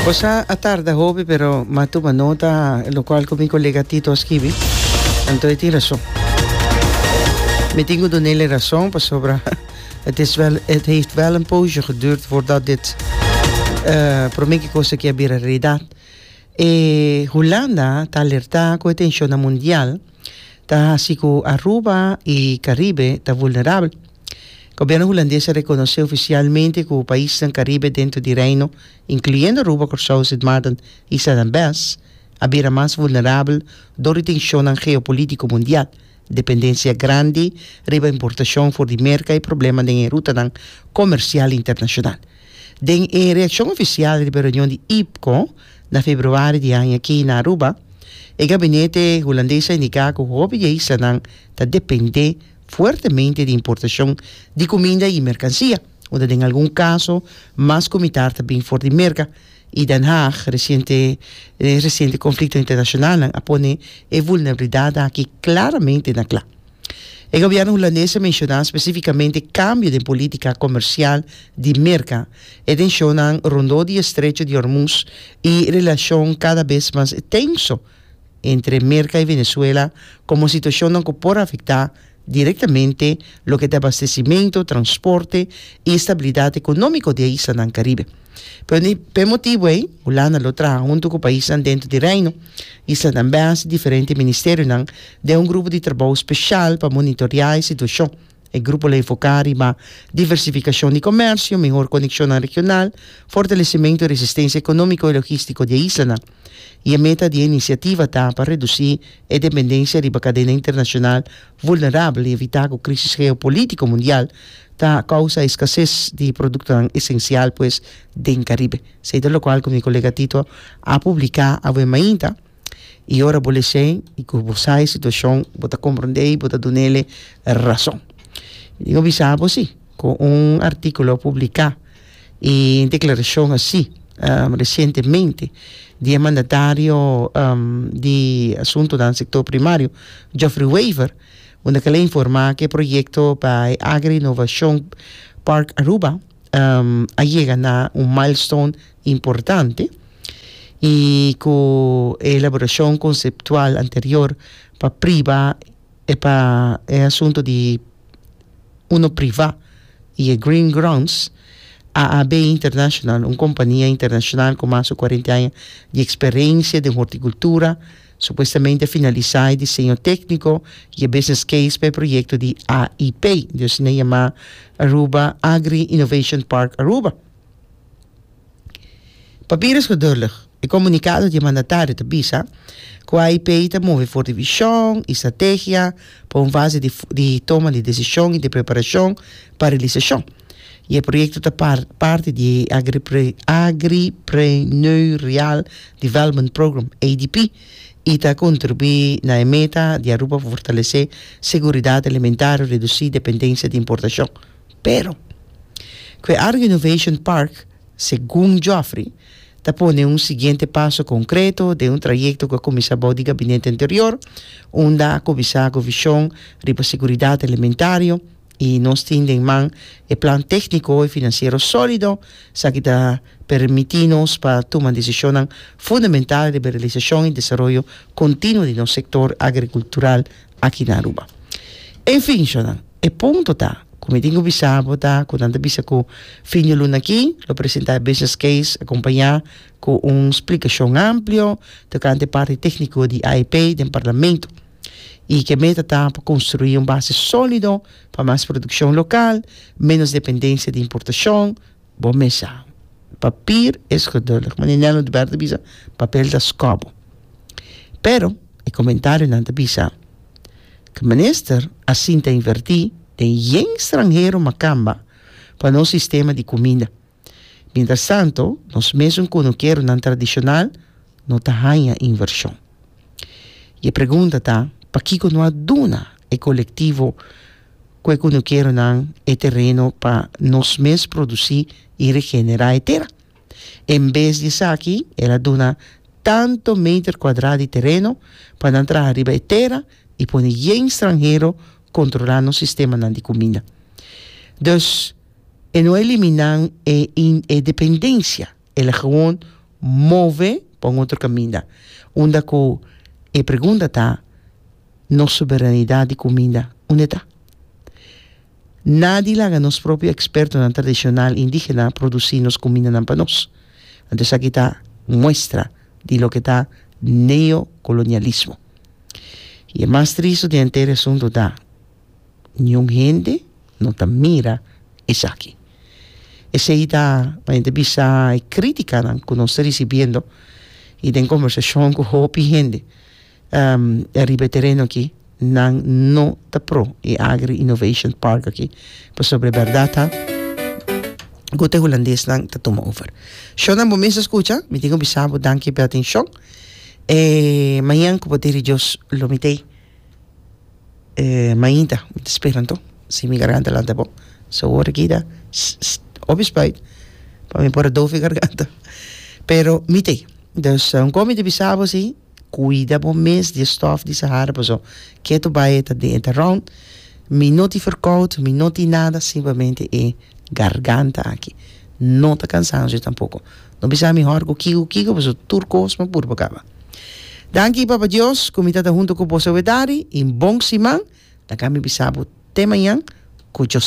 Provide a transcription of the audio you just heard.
Bo sa a tarda hopi pero m'a tuma nota lo cual cu mi colega Tito a skibi. Anto e tin rason. Mi tin cu dunel e rason pasobra het is wel, het heeft wel een poosje geduurd voordat dit eh prome ki cosa aki a bira realidad. E Hulanda ta alerta cu e tencionnan mundial ta haci cu Aruba y Caribe ta vulnerabel. Gobierno Hulandes a rekonosé ofisialmente ku paisnan Karibe dentro di Reino, inkluyendo Aruba, Kòrsou, Sint Maarten i San Andes, a bira mas vulnerabel dor di tenshonnan geopolítiko mundial, dependensia grandi riba importashon for di Merka i problema den e rutanan komersial internashonal. Den e reakshon ofisial riba e reunion di IPCO na februari di aña aki na Aruba, e gabinete Hulandes a indikà ku hopi di e islanan ta dependé fuertemente di importacion di cuminda y mercancia, unda den algun caso mas cumitar ta bin for di Merca y Den Haag reciente den reciente conflicto internacionalnan a pone e vulnerabilidad aki claramente na cla. E gobierno Hulandes a menciona specificamente cambio den politica comercial di Merca, e tencionnan rondó di Estrecho di Hormuz y relacion cada bes mas tenso entre Merca y Venezuela como situacionnan cu por afecta directamente loke ta abastecimento, transporte y estabilidad economico di e islanan Caribe. Pero ni p'e motibo ey, Hulanda lo traha hunto cu paisnan dentro di Reino, islanan Basque y diferente ministerionan den un grupo di trabou special pa monitorea e situacion. E grupo la enfoká riba diversifikashon di komèrsio, mihor konekshonnan regional, fortalesimentu e resistensia ekonómiko i logístiko di e islanan. I e meta di e inisiativa ta pa redusí e dependensia riba kadena internashonal vulnerabel i evitá ku krísis geopolítiko mundial ta kousa eskasés di produktonan esensial pues den Karibe. Seita lokual ku mi kolega Tito a publiká awe mainta. I ora bo lesen i ku bo sa e situashon, bo ta komprendé i bo ta dun'el'e rason. Mi tin ku bisa bo si, ku un artíkulo publiká i un deklarashon así resientemente di e mandatario di asuntunan di sektor primario, Geoffrey Wever, unda ke el a informá ku e proyekto pa e Agri Inovashon Park Aruba a yega na un milestone. importante y cu e elaboracion conceptual anterior pa priba e pa e asunto di uno priva y e green grounds AAB International un compania internacional cu mas cu cuarente aña di experencia den horticultura supuestamente a finalisa e diseño tecnico y e business case pa e proyecto di AIP dios esaki a yama Aruba Agri Innovation Park Aruba. Papier es gedurlig. E comunicado di e mandatario ta bisa cu AIP ta move for di vision y strategia pa un fase di toma di decision y di preparacion pa realisacion. Y e proyecto ta parti di e Agripreneurial Development Program, ADP, y ta contribui na e meta di Aruba pa fortalece seguridad alimentario y reduci dependencia di importacion. Pero, kue Argo Innovation Park, segun Geoffrey, ta pone un siguiente paso konkreto den un trayekto ku a kuminsá bou di gabinete anterior, unda a kuminsá ku vishon riba seguridat elementario i nos tin den man e plan tékniko i finansiero sólido, sa ki ta permití nos pa tuma desishonnan fundamental riba e realisashon i desaroyo kontinuo di nos sektor agrikultural aki na Aruba. En fin, shornan, e punto ta cu mi tin cu bisa bo ta cu nan ta bisa cu fin di luna aki lo presenta e business case acompaña cu un splicacion amplio tocante e parti tecnico di AEP den Parlamento y cu e meta ta pa construi un base solido pa mas produccion local, menos dependencia di importacion, Bo mesa papir es gedulig mane Nel Odubert a bisa papel ta skobo pero e komentarionan ta bisa ke minister a sinta invertí den yen stranhero ma kamba pa nos sistema di kuminda mientras tanto nos mesun kunukeronan tradishonal no ta haña invershon y e pregunta ta pakiko no a duna e kolektivo ku e kunukeru nan e tereno pa nos mes produsí i regenerá e tera. En bes di esaki, el a duna tantu meter kuadrá di tereno pa nan traha riba e tera i pone yen stranhero kontrolá nos sistemanan di kuminda. Dus e no eliminá e dependensia. el a gewoon move pa un otro kaminda, unda ku e pregunta ta, Nos soberanidat di kuminda unda e ta? Nadi laga nos propio ekspertonan tradishonal indígena produsí nos kumindanan pa nos. Anto esaki ta un muestra di loke ta neokolonialismo. I e mas tristu den e henter e asuntu ta, niun hende no ta mira esaki. Esei ta pasobra bisa e kritikanan ku nos ta risibiendo i den kombersashon ku hopi hende ariba e tereno aki nan no ta pro e Agri Innovation Park aki pasobra e bèrdat ta gutta e hulandesnan ta tuma over. Shornan bo mes a skucha, mi tin ku bisa bo danki p'e atenshon. E mañan ku poder di Dios lo mit'ei E mainta mi ta spera anto si mi garganta lanta bon so wor aki ta sstt opi spuit pa mi por a dofi garganta pero mi te dus nko mi ta bisa bo si kuida bo mes di e stof di sahara paso ketu bai e ta den e ta rònt mi no tin ferkoud mi no tin nada simplemente e garganta aki no ta kansansio tampoko no bisa mi hòr ku kiko ku kiko paso tur kos mi a purba kaba. Danki Papa Dios ku mi ta ta huntu ku bo Sewedadi, in bon siman, laga mi bisa bo te mañan ku Dios.